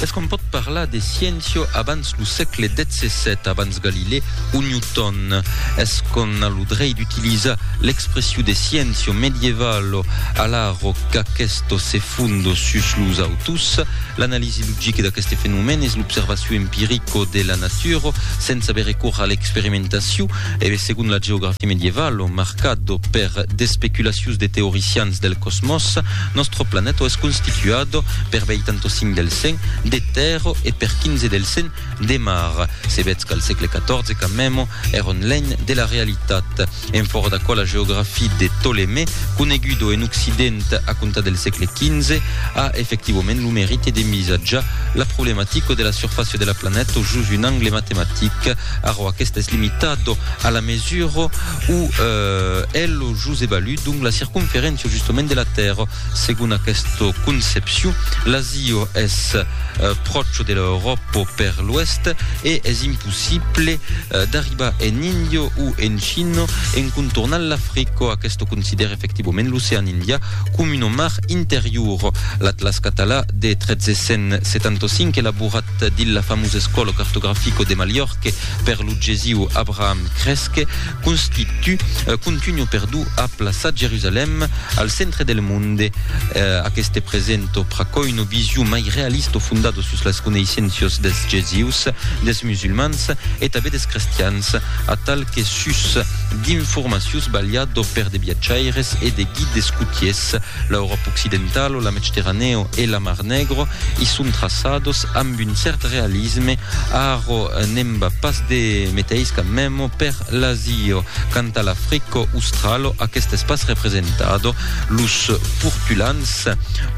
Es qu'on pòt parlar de sciéncia abans lo sègle xvii, abans Galilée o Newton? Es qu'on a lo drei d'utilizar l'expressiu de sciéncia medievalo alaro qu'aquesto se fond sus los autos? L'analisi logica d'aqueste fenomèn es l'observaciu empirico de la natura sens aver recors a l'experimentaciu e, segon la geografia medievalo, marcado per d'especulacius de teoricians del cosmòs, nòstro planèto es constituado per veitanto cinc del cent de tèrra e per quinze del cent de mar. Se vetz qu'al sègle XIV camèmo èr un lènh de la realitat. En fòra d'aquò la geografia de Ptolemè, conegudo en occident a comptar del sègle XV, a efectivament lo merite d'envisatjar la problematica de la surfàcia de la planèto jos un angle matematic, arrò aquesta es limitado a la mesura o el Jos evaluo donc la circonferéncia justament de la Tèrra. Segon aquesta concepcion, l'Azio es pròcho de l'Euròpo per l'oèst e es impossible d'arribar en Indio o en China en contornant l'Africa. Aquesta considèra efectivament l'ocean Indià coma una mar interior. L'Atlas Català de 1375, elaborat dins la famosa escòla cartografica de Mallorca per lo gesir Abraham Cresque, Constitu, contunho perdu a plaçat Jerusalèm, al centre del monde. Aqueste presento pr'acuòi una vision mai realista fondada sus las coneissenças dels gesius, dels musulmans e tanben dels crestians, atal que sus d'informacius balhada per de viatjaires e de guides cotiers, L'Euròp occidental o la Medcteranèo e la Mar Negro i son traçados amb un cèrt realisme, arro n'èm pas de meteis cas memo per l'Asio. Quant a l'Africo Australo, aquest es pas representado, los portulans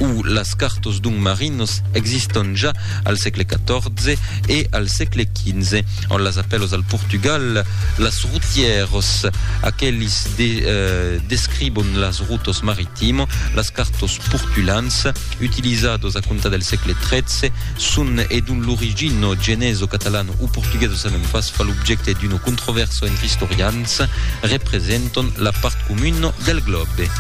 o las cartos d'un marinos existon ja al sègle 14 e al sègle 15. en las apèlos al Portugal, las routièros, aquelis de describon las routes maritimo, las cartos portulans, utilizados a comptar del sègle XIII, son e dont l'origino, genezo, catalano o portugueso sabèm pas, fa l'objècte d'uno controvèrso entre istorians, representon la part comuna del glòbe.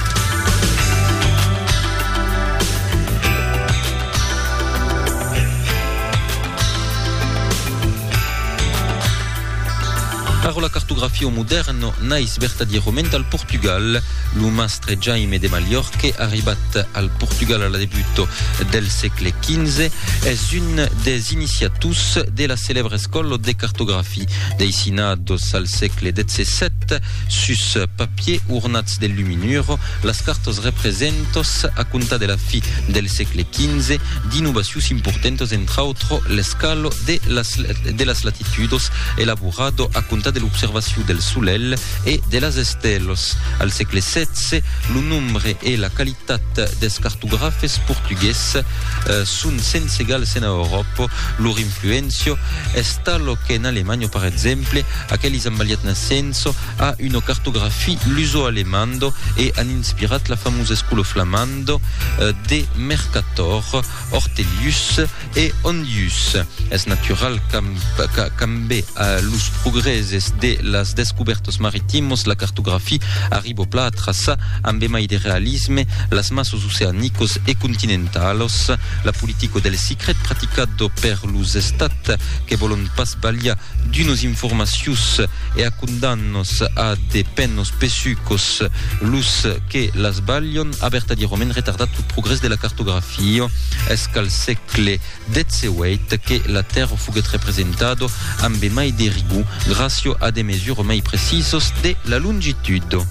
Arròla cartografia o modèrn nais vertadièrament al Portugal. Lo mastre Jaime de Mallorque, arribat al Portugal a la debut del sègle XV, es un des iniciators de la celèbra escòla de cartografia. Deissinados al sègle XVII sus papier ornats de luminuro, Las cartas representas, a comptar de la fi del sègle XV, d'innovacions importantas entr'autre l'escalo de las de las latitudos elaborado a comptar de l'observacion del solelh e de las estèlas. Al sègle xvi, lo nombre e la qualitat dels cartografes portugués son sens egals ena Euròpa. Lor influéncia es tala qu'en Alemanha, per exemple, aquelis amb aliat nascença, a una cartografie luso-alemando e an inspirat la famosa escolo flamando de Mercator, Ortelius e Hondius. Es natural qu'ambe los progrèses de las descubèrtas maritimos la cartografie arribo pla a traçar ambe mai de realisme las masas oceanicas e continentalas. La politica del sicret praticada per los estats que vòlon pas balhar d'unas informacions e a condannos a de pennos pesucos los que las balhon, a vertadiroment retardat lo progrès de la cartografia. Es qu'al sègle XVIII que la tèrra foguèt representado ambe mai de rigor, gracio a de mesures mai precisos de la longitudo.